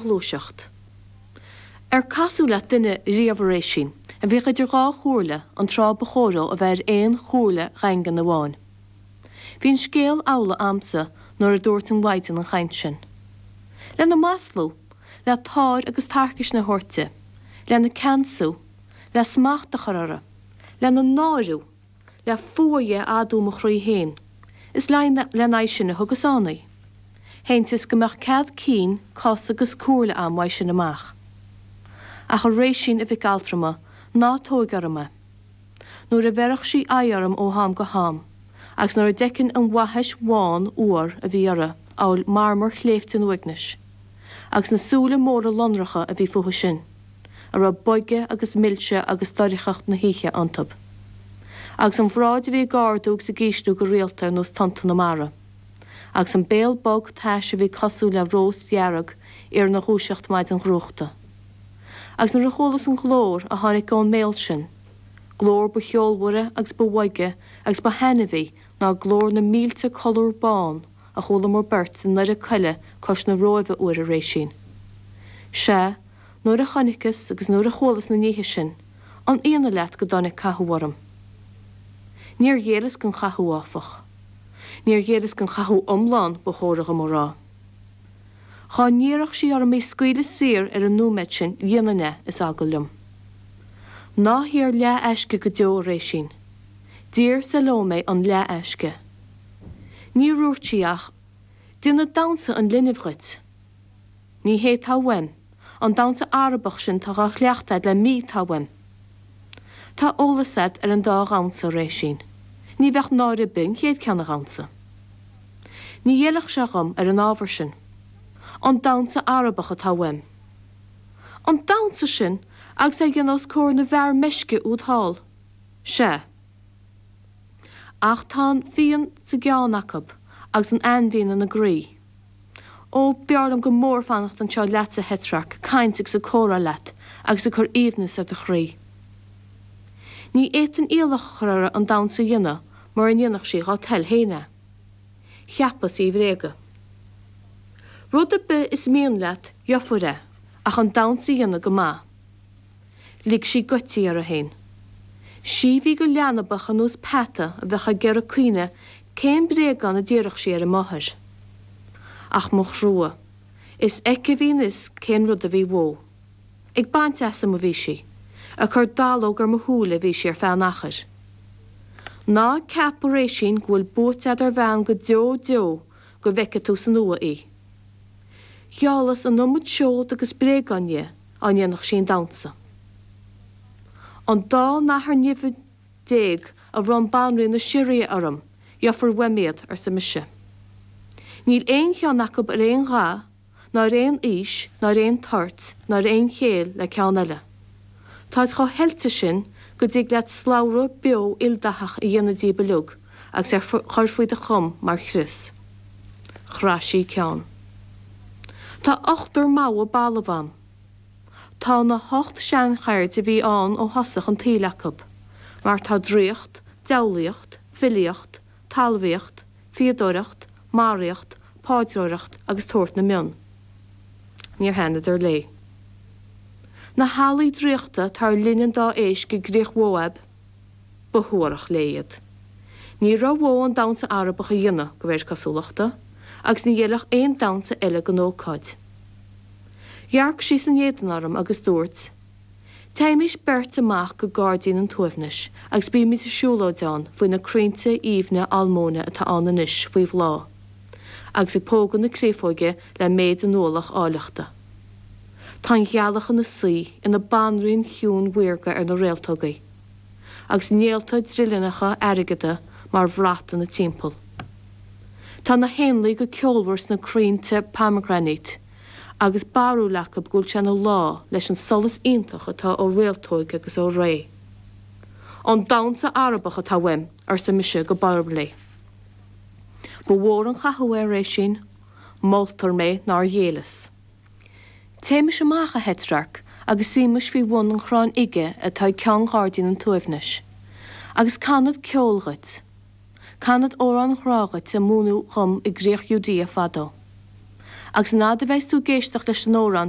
gluaiseacht. Ar casadh leat duine riamh a Réisín, a bhíodh idir dhá chomhairle, an tráth ba chóir dó a bheith ar aon chomhairle dhaingean amháin? Bhí an scéal amhlaidh a'msa nuair a dúirt an mhaighdean an chaint sin. Lena maslú, le táir agus tarcaisne a thabhairt di, lena ceansú, le smacht a chur uirthi, lena náiriú, le fuath dhi a adú i mo chroí fhéin, is lena aghaidh sin a thugas ann í. Shantaíos go mbeadh cead cinn, cos agus comhairle agam uaidh sin amach. Ach a Réisín, a mhic altrama, ná tóig orm é. Nuair a bheireadh sí aghaidh orm ó ham go ham, agus nuair a d'fheicinn an bhaithis bhán fhuar a bhí uirthi, amhail marmar shléibhte an uaignis, agus na súile móra lonracha a bhí fúithi sin, a raibh boige agus milse agus doircheacht na hoíche iontu, agus an bhráid a bhí ag ardú agus ag ísliú go rialta ar nós tonnta na mara, agus an béal bog tais a bhí cosúil le rós dhearg arna dhúiseacht maidin dhrúchta. Agus nuair a chualas an glór a tháinig ón mbéal sin, glór ba cheolmhaire agus ba bhoige agus ba thaitneamhaí ná glór na mílte colúr bán, a chualamar beirt i ndoire coille cois na Róimhe uair a Réisín. Sea, nuair a chonaiceas agus nuair a chualas na níthe sin, an íonadh leat go dtáinig cathú orm? Níor ghéilleas don chathú, áfach. Níor ghéilleas don chathú iomlán, ba chóra dhom a rá. Dhá n-iarrfadh sí orm í scaoileadh saor ar an nóiméad sin, dhéanfainn é, is eagal liom. Ná hiarr leath-aisce go deo, a Réisín. D'iarr Salómé an leath-aisce. Níor dhúirt sí ach, 'Déanfad damhnsa an linbh dhuit. Ní hé tá uaim, an damhnsa Arabach sin 'tá dhá chleachtadh agat le mí 'tá uaim. Tá eolas agat ar an dá dhamhnsa, a Réisín. Ní bheadh náire ar bith an chéad ceann a dhamhnsa. Ní ghéillfeadh sé dhom ar an ábhar sin. An damhnsa Arabach atá uaim. An damhnsa sin agus é a dhéanamh os comhair na bhfear meisce úd thall. Sea. Ach tá an fíon sa gceann acu agus an ainmhian ina gcroí. Ó, b'fhearr liom go mór fanacht anseo leatsa a Theatrarc, ag caint agus ag comhrá leat agus ag cur aoibhneas ar do chroí. Ní fhéadfainn iallach a chur uirthi an damhnsa a dhéanamh mura ndéanfadh sí dhá toil féin é. Cheapas í a bhréagadh. Rud ar bith is mian leat, gheofar é, ach an damhnsa a dhéanamh go maith. Lig sí goití uirthi fhéin. Sí bhí go leanbach ar nós peata a bheadh ag iarraidh cuimhneamh cén bréagán a d'iarrfadh sí ar a máthair. Ach mo thrua. Is aici a bhí an fios cén rud a bhí uaithi. Ag baint asam a bhí sí. Ag cur dallóg ar mo shúile a bhí sí ar feadh an achair. Ná ceap, a Réisin, go bhfuil buaite agat ar bhean go deo deo go bhfeice tú san uaigh í. Gheallas an iomad seod agus bréagán dhi. dá ndéanfadh sí an damhsa. An dá nathair nimhe déag a bhronn banríon na Siria orm, gheofar uaim iad, arsa mise. Níl aon cheann acu ar aon dhath ná ar aon aois ná ar aon toirt ná ar aon chéill le ceann eile. Táid chomh hoilte sin go dtig leat slabhra beo ildathach a dhéanamh díobh uilig, agus é a chur faoi do chom mar chrios. Chraith sí a ceann. Tá ochtar mogha balbh a'm. Tá na hocht seancheird a bhí ann ó thosach an tsaoil acu, mar tá draíocht, diabhlaíocht, filíocht, talmhaíocht, fíodóireacht, maraíocht, paidreoireacht agus tabhairt na mionn. Níor thaitneadar léi. Na healaí draíochta atá ar linn an dá éisc i gCríoch Mhóaib, Ba shuarach léi iad. Ní raibh uaithi an damhsa Arabach a dhéanamh, de réir cosúlachta, agus ní fheilfeadh aon damhsa eile don ócáid. Dhearc sí san éadan orm agus dúirt, Téimis beirt amach go gairdín an tsuaimhnis agus bímid ag siúlóid ann faoi na crainnte aoibhne almóinne atá ann anois faoi bhláth, agus ag pógadh na créafóige le méid a n-ualach áilleachta. Tá an ghealach ina suí ina banríon chiúin mhaorga ar na réaltógaí, agus néalta drithleannacha airgeada mar bhrat ina timpeall. Tá na héanlaith go ceolmhar sna crainnte pomegranate, agus barúil acu go bhfuil sé ina lá leis an solas iontach atá ó réaltóig agus ó ré. An damhsa Arabach atá uaim, arsa mise go borb léi. Ba mhór an cathú é, a Réisin. Moltar mé nár ghéilleas. Téimis amach, a Theatrarc, agus suímis faoi bhun an chrainn fhige atá ag ceann ghairdín an tsuaimhnis. Agus canfad ceol dhuit. Canfad amhráin ghrá dhuit a múineadh dhom i gcríoch Iúdéa fadó. Agus an fhaid a bheidheas tú ag éisteacht leis an amhrán